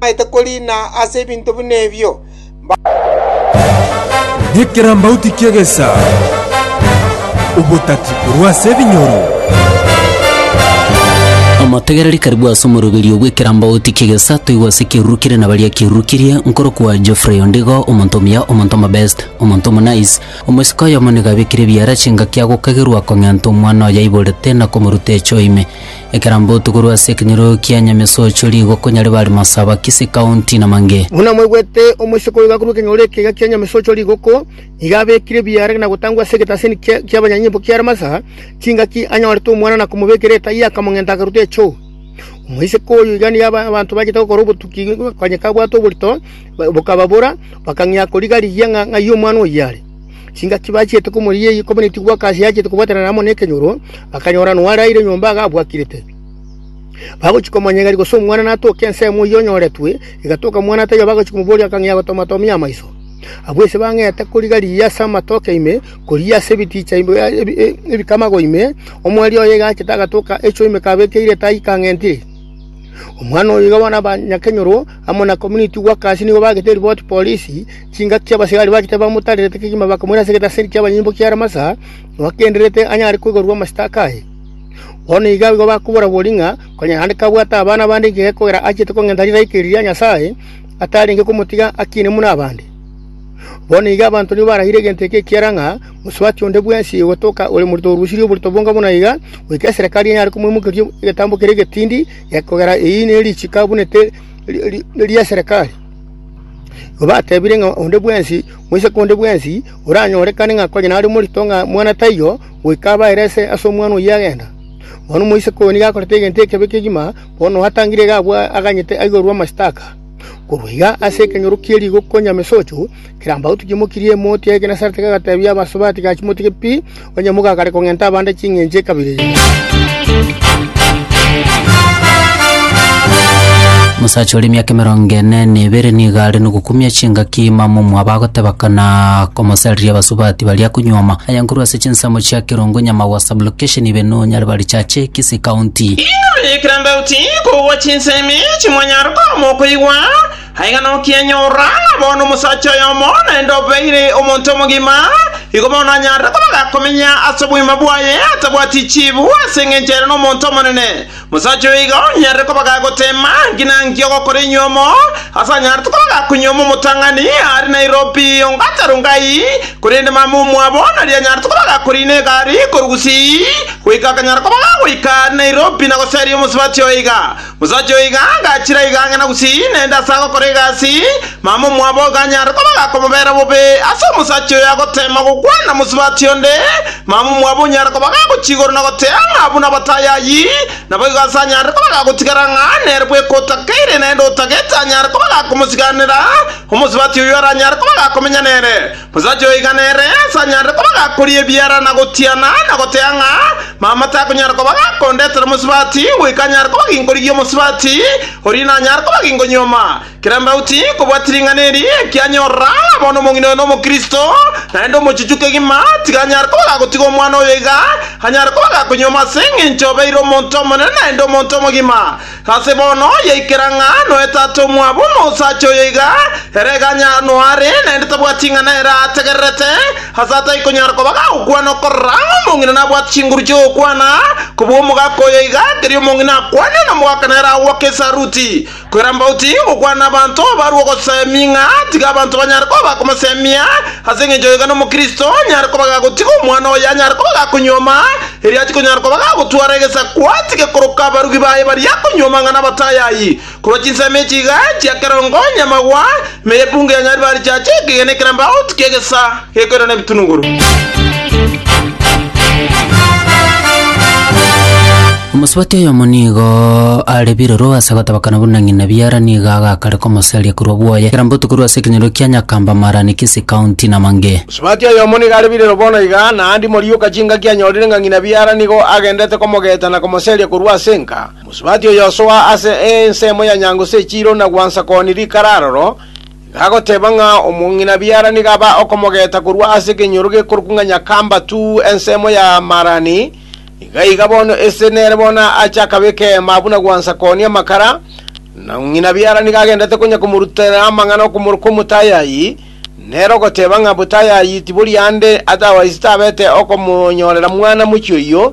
Bamaete koriina ase ebinto buna ebio, mbabwate ekerabaoti ki'egesa, obotaki korwa ase ebinyoro. Omotegereri karibu ase omoroberio bw'ekerabaoti ki'egesa toigwe ase ekeruru kere na baria kerurukirie, nkorokwa Geoffrey Ondigo, omonto omuya, omonto omobest, omonto omonice. Omosike oyomo nigo abekire ebiara chingaki agokagerwa kong'enta omwana oyo aiborete na komoruta echo ime. Ekerambe otugurwe ase ekenyoro kia Nyamesocho rigwa konya ribare Masaba, Kisii County, Namange. Buna mwaigwete, omoiseke oyo gakurwa ekenyoro ekega kia Nyamesocho rigoko, nigo abekire ebiara na gotangwa ase egetasini ki'abanyanyimbo kiare Masaba, chingaki anyorete omwana na komobekera etaiyo akamong'enta akaruta echoo. Omoiseke oyo iga nigo abanto bachete gokora obotuki, konya kabwate oborito, bokababora, bakang'ia koriga rigiya ng'a ng'ai omwana oyio are. Chingaki bachiete komoria eyio kobua netigwa aka ase achete kobwatanana amo nekenyoro, bakanyora noaraire nyomba iga abwakirete. Bagochia komonyegeri gose omwana natoke ensemo eyio onyoretwe, egatoka mwana taiyo bagochia komoboria akang'ea gotomatomia amaiso. Abwo ise bang'ete koriga riya ase amatoke ime, koriya ase ebiticha ebikamago ime, omwerio oye egachete agatoka echo ime kabekeire tai kang'entire. Omwana oyo iga bono abanyakenyoro amo na kominiti gwa kasi nigo bagete eriboti polisi, Chingaki chi'abasibari ba Gitare bamotarerete kegima bakamoira ase egetaseri ki'abanyunyunto kia Ramasa, nobagendererete anyare koigorwa amasitaka aye. Bono iga abwo bakoborabori ng'a konya naende kabwate abana bande inche gekogera achiete kong'enta rilaika eri ria Nyasae, atarenge komotiga akine buna abande. Bono iga abanto nigo baragire egento eke ekiagera ng'a mosubati onde bwensi ogotoka ore morito orusirie oborito bonga buna iga, goika eserekari enyare komoimokeria egetambo keria egetindi gekogera eyio nerichiko abunete ri'eserekari. Batebirie ng'a onde bwensi moiseke onde bwensi oranyorekane ng'a konya nare omorito ng'a mwana taiyo, goika abaere ase omwana oyio agenda. Bono omoiseke oyo nigo akorete egento ekebe kegima, bono oatangire iga abwo aganyete aiborwe amashtaka. Korwa iga ase ekenyoro kie rigo konya mesocho, kirambagotu kimokirie emoti ya Genesareti kegatebia abasubati, Gaki motige pi! Onye mogakare kong'enta abande ching'encho ekabira eye. Omosacha ore emiaka emerongo ene na ebere nigo are nogokumia chingaki imamo omwabo agoteba kana komosariria abasubati baria konyuoma aya nkorwa ase chinsemo chia Kerongo Nyamagwa Sublocation ibe nonyare barichache Kisii County. Inwe ekerambe oti kogwa chinsemi chimwanyara korwa mokoigwa, Aye ng'a nokianyora, bono omosacha oyomo naende obeire omonto omogima, igo bono anyarire kobaga komenya ase obogima bwaye atabwati chiibu ase engencho ere nomonto omonene. Omosacha oyo iga onyarire kobaga goteema nki na nki ogokora enyuomo, ase anyarete kobaga konyuoma omotang'ani aare na erobi onga atarongai, korende mama omwabo nari anyarete kobaga koriina egari korwa gusii goika akanyara kobaga goika aare na erobi na goseria omosubati oiga. Mosacha oyo iga agachira iga ang'e na gusii, naende ase agokora egasi, mama omwabo iganyare koba gakomobera bobe. Ase omosacha oyo agoteema gokwana mosubati onde, mama omwabo onyare koba gagochia igoro na gotea ng'a buna batayayi, naboigo ase anyare koba gagotigara ng'a nere bweka otakeire naende otagete anyare koba gakomosiganera omosubati oyio aranyare koba gakomenya nere. Omosacha oiga nere sanyanrete koba gakoria ebiara na gotiana, na goteba ng'a mama takonyara koba gakondetera omosubati, goika anyare koba ginkorigia omosubati, oria nanyare koba ginkonyuoma. Kera embauti nkobwati ring'ana eri ekianyorora, ng'a bono omong'ina oyo nomokristo, naende omochuchu kegima, tiga anyare koba gagotiga omwana oyo iga anyare koba gakonyuoma ase engencho obeire omonto omonene naende omonto omogima. Ase bono yaikera ng'a noe tata omwabo na osacha oyo iga, ere iga anya noare, naende tabwati ing'ana ere ategererete, ase atai konyara koba gagokwana okorora ng'a omong'ina nabwate chinguru chi'ogokwana, kobua omogaka oyo iga, keria omong'ina akwane, na omogaka nere agoaka esaruti, koira mbauti gokwana abanto barue ogosemia ng'a tiga abanto banyare koba bakomosemia, ase engencho oyo iga nomokristo onyare koba gagotiga omwana oye anyare koba gakonyuoma, Erio atikonyara koba gagotwara egesaku, atige koroka abarugi baye baria akonywa amang'ana abatayayi, korwa chinsemo echi iga chia kerongo onye amagwa, ime y'epungu ya Nyaribari chiacha ekegena ekerambe agotu ki'egesa gekoirana ebitunuguru. Omosubati oyomo nigo are biroro ase gotabakana buna ng'ina biara nigo agakareka omosaria korwa bwoye, ekerambe otuko korwa ase ekenyoro kia Nyakamba, Marani, Kisii County, na Mange. Sibati oyomo nigo are birero bono iga, naende imoriuka chingaki anyorire ng'a ng'ina Biara nigo agendete komogeeta na komoseria korwa ase enka. Mosibati oyosoa ase ensemo ya nyango se chiiro na gwansa kooni rikara aroro, iga agoteeba ng'a omo ng'ina Biara nigo aba okomogeeta korwa ase ekenyoro gekorokwa ng'a Nyakamba tu ensemo ya Marani, iga iga bono ese nere bono ache akabeka eema buna gwansa kooni amakara, na ng'ina Biara nigo agendete konya komorutera amang'ana okomoroka omotayayi, Nere ogoteba ng'a botayayitibori aande atawaiso tabete okomonyorera mwana mochie oyio,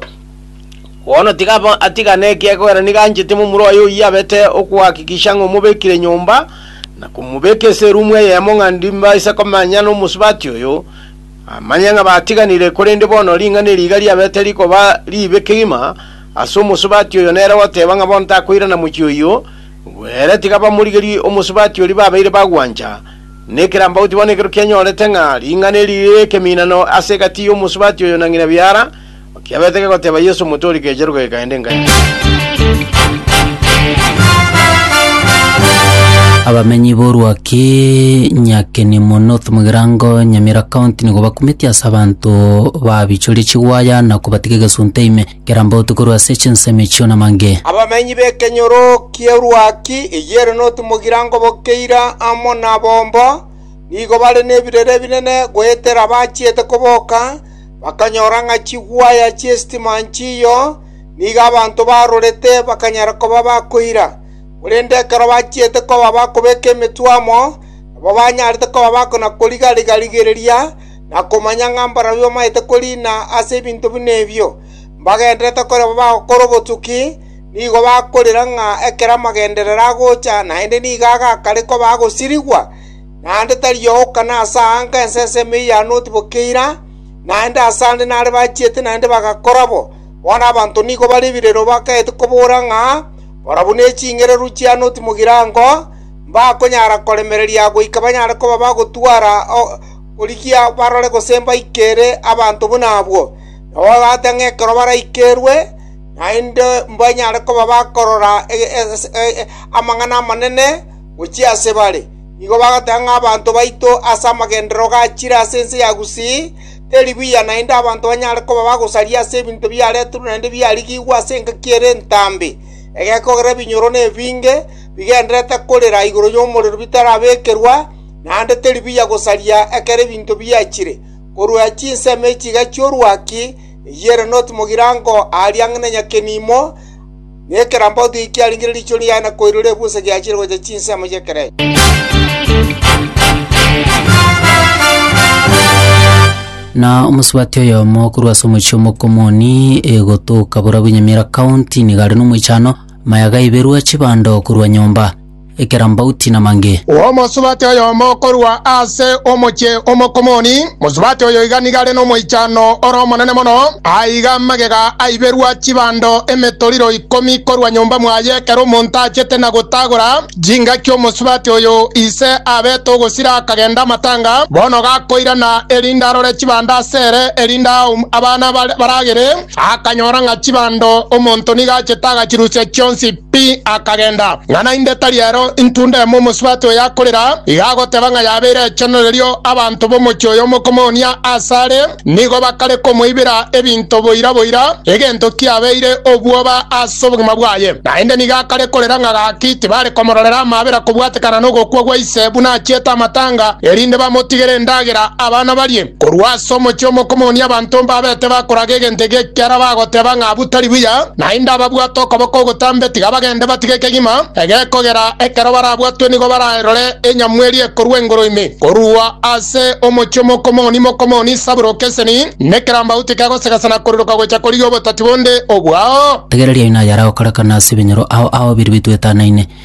bono tiga atigane ekiagera ogera nigo anchete momura oye oyio abete okohakikisha ng'a omobekire nyomba, na komobeka ase erumu eyemo ng'a ndimbaise komanya nomosubati oyo, amanye ng'a batiganire, korende bono ring'ana eri iga riabete rikoba ribe kegima ase omosubati oyo nere ogoteba ng'a bono takoirana mochie oyio, ere tiga bamorigerie omosubati oria babeire bagwancha. Nekerambe ogotiga bono ekero kianyorete ng'a ring'ana eri rire ekeminano ase egati y'omosubati oyo na ng'ina biara, kiabete kegoteba Yeso Omotoori keche ruga gekaenda engache. Abamenyi b'orwaki Nyakenimo North mu Girango, Nyamira County nigo bakumeti ase abanto babichoria chigwaya na kobatiga egesunte ime. kera mbootu korwa ase chinsemo echio namange. Abamenyi b'ekenyoro ki'eruaki eyere notomogirango bokeira amo nabomba, nigo bare nebirere binene goetera bachiete koboka, bakanyora ng'a chigwaya chi'esitima nchiyo, nigo abanto barorete bakanyara koba bakoira. Korende ekero bachiete koba bakobeka emetwe amo, nabo banyarete koba bakona-koriga-riga-rigereria, na komanya ng'a mbarabwo bamaete koriina ase ebinto buna ebio, mbagendererete korema bagokora obotuki, nigo bakorera ng'a ekero amagenderero agocha naende nigo agakare koba agosirigwa, naende tari ooka nase aa nka ensesemi eyane otiboke eira, naende ase ande nare bachiete naende bagakora bo. Bono abanto nigo bare ebirero bakaete kobora ng'a, Barabwo ne ching'ereru chiane otimogirango, mbakonyara koremereria goika banyare koba bagotwara korigia barore gose mbaikere abanto buna abwo, nabo babate ng'a ekero baraikerwe naende mbanyare koba bakorora amang'ana amanene gochia ase bare. Nigo bagateba ng'a abanto baito ase amagenderero gachire ase ense ya Gusii teri buya naende abanto banyare koba bagosaria ase ebinto biareterwe naende biarigigwe ase engaki ere entambe, egekogera ebinyoro na ebinge bigendererete korera igoro y'omorero bitarabekerwa, naende teri buya gosaria ekero ebinto biachire, korwa chinsemo echi chi'orwaki, eyio ere notimogiraango aaria ang'e na Nyakenimo, na ekerambaoto eki kiarenge riicho riaye na koirora ebusa giachire gocha chinsemo chi'ekerecha. Na omosubati oyomo korwa ase omochie omokong'oni egotoka Burabwanyamira County nigo are nomoichano, maya gaiberwa chibando korwa nyomba. ekerambauti na mange. Omosubati oyomo korwa ase omochie o Mokomoni, mosubati oyo iga nigo are nomoichano ore omonene mono, aiga amagega aiberwa chibando emetoriro ikomi korwa nyomba mwaye ekero omonto achete na gotagora chingaki omosubati oyo ise abete ogosira akagenda amatanga, bono gakoirana erinde arore chibando ase ere erinde aum abana baragere, akanyora ng'a chibando omonto nigo achete agachirusia chionsi. Pi akagenda, ng'a naende tari ero intwe onde emo omosubati oyo akorera, iga agoteba ng'a yabeire echeno erio abanto b'omochie oyo omokomonia aase are, nigo bakare komoibera ebinto boira boira, egento kiabeire obwoba ase obogima bwaye. Naende nigo akare korera ng'a gaki tibare komororera amaabera kobwatekana nogokwa gwa ise buna achiete amatanga, erinde bamotigere endagera abana barie. Korwa ase omochie omokomonia abanto mbabete bakoraga egento eke ekiara bagoteba ng'a butari buya, naende ababwate okoboko ogotambe tiga bagende batige kegima ege kogera ekero barabwatwe nigo bararore enyamweri ekorwa engoro ime. Korwa ase omochie omokomoni mokomoni Saburo Keseni, nekerambauti kegosegesa na koriroka gocha korigia obotati bonde obwao. Rigereria inayara gokorekana ase ebinyoro ao ao biria bitwetanaine,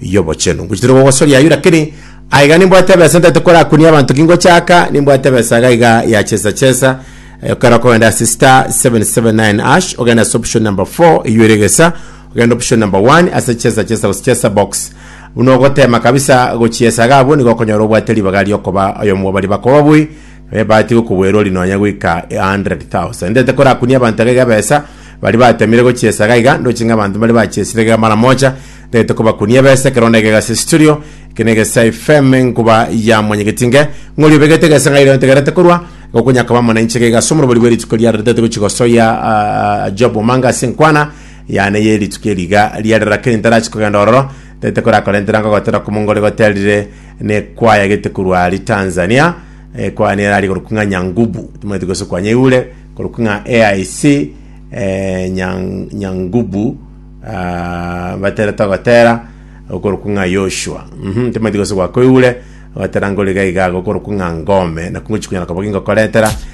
y'obochenu. Ngochitire gogosoria ayio lakini aiga nimbwate ebesa ntete korakunia abanto kingochaka nimbwate ebesa iga iga ya chesa chesa Eh, okera okogenda ase star 779 ash ogenda ase option number 4 eyio ere gesa ogenda option number 1 ase chesa chesa gose chesa box buna ogotema kabisa gochiesa iga abwo nigo okonyora obwate ribaga riokoba oyomo bari bakoba bwi Ebahati y'okogwerwa ri nonya goika a hundred thousand. Ndete korakunia abanto iga iga ebesa, baria batemire gochiesa iga iga, ndoche ng'a abanto mbaria bachiesire iga mara mocha, ndete kobakunia ebesa, ekero onde egega ase esiturio, eke negesa FM, enkuba yamonyegetie inge, ng'ori obegete egesa ng'a iria ontegerete korwa, igo okonya koba amo nainche iga iga ase omorobori bw'erituko riare ritete gochi gosoyia ah, Job Omanga ase enkwana yane y'erituko eri iga riarera keri ntarachi kogenda ororo, ndete korakorentera ngogotera komongore goterire Ne kwaya gete korwa ari Tanzania eh, kwaya nere ari korokwa ng'a Nyangubu timanyete gose kwa Nyaigure korokwa ng'a AIC eh, Nyang- Nyangubu ah, batera togotera okorokwa ng'a Yoshua mhm timanyete gose gwa koigure batera ngoriga igago okorokwa ng'a Ngome nakungochi kunyara koba gingokoretera